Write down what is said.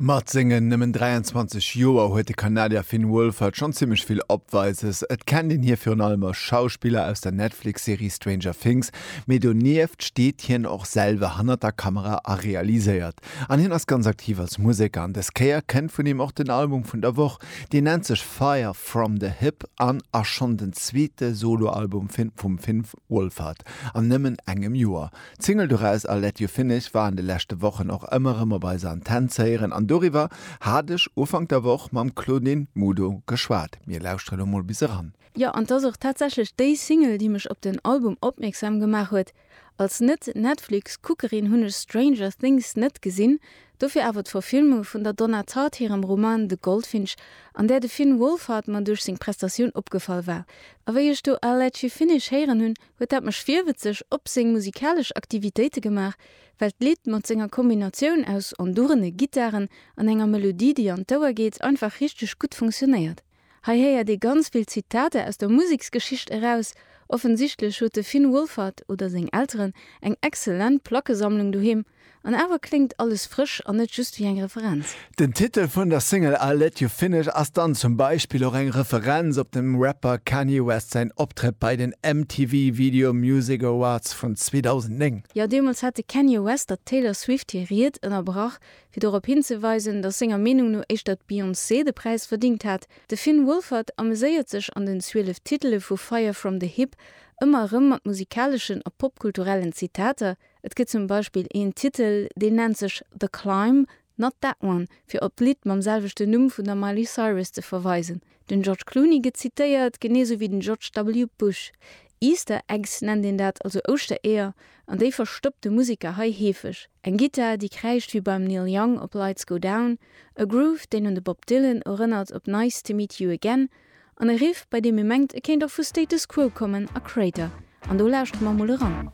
Mat sengen nëmmen 23 Joer huet de Kanadier Finn Wolfhard schonn zimmlech vill Opweises. Et kennt een hie virun allem als Schauspiller aus der Netflix-Serie Stranger Things, mee donieft steet hien och selwer hannert der Kamera a realiséiert. An hien ass ganz aktiv als Museker an dës Kéier kënnt vun him och den Album vun der Woch. Deen nennt sech Fire From The Hip an ass schonn den zweete Solo-Album vum Finn Wolfhard an nëmmen engem Joer. D'Single doraus I'll Let You Finish war an de leschte Wochen och ëmmer erëm op eiser Antenn ze héieren an doriwwer hat ech Ufank der Woch mam Claudine Mudo geschwat. Mir lauschtere lo mol bis eran. Jo, an 't ass och tatsächlech déi Single, déi mech op den Album opmierksam gemaach huet. Als Net-Netflix-Kuckerin hunn ech Stranger Things net gesinn, dofir awer d'Verfilmung vun der Donna Tartt hirem Roman The Goldfinch, an där de Finn Wolfhard mer duerch seng Prestatioun opgefall war. A wéi ech do I'll Let You Finish héieren hunn, huet dat mech virwëtzeg op seng musikalesch Aktivitéite gemaach, well d'Lidd mat senger Kombinatioun aus enduerene Gittaren an enger Melodie, déi an d'Ouer geet, einfach richteg gutt funktionéiert. Hei héiert ee ganz vill Zitater aus der Museksgeschicht eraus. Offensichtlech huet de Finn Wolfhard oder seng Elteren eng exzellent Plackesammlung doheem. An awer kléngt alles frësch an net just wéi eng Referenz. Den Titel vun der Single I'll Let You Finish ass dann zum Beispill och eng Referenz op dem Rapper Kanye West säin Optrëtt bei den MTV Video Music Awards vun 2009. Jo, deemools hat de Kanye West der Taylor Swift hir Ried ënnerbrach, fir dorop hinzeweisen, datt senger Meenung no éischter d'Beyoncé de Präis verdingt hat. De Finn Wolfhard ameséiert sech an den 12 Titele vu Fire From The Hip ëmmer erëm mat musikaleschen a popkulturellen Zitater, Et gëtt zum Beispill een Titel, deen nennt sech The Climb, Not That One, fir op d'Lidd mam selwechten Numm vun der Miley Cyrus ze verweisen. Den George Clooney gëtt zitéiert, genee sou wéi den George W. Bush. Easter Eggs nennt een dat, also Ouschtereeër, an déi verstoppt de Museker hei heefeg. Eng Gittar, déi kräischt wéi beim Neil Young op Lights Go Down, e Groove, deen un de Bob Dylan erënnert op Nice To Meet You Again, an e Riff, bei deem ee mengt, e kéint och vu Status Quo kommen a Kreator. An do lauschtere mer emol eran.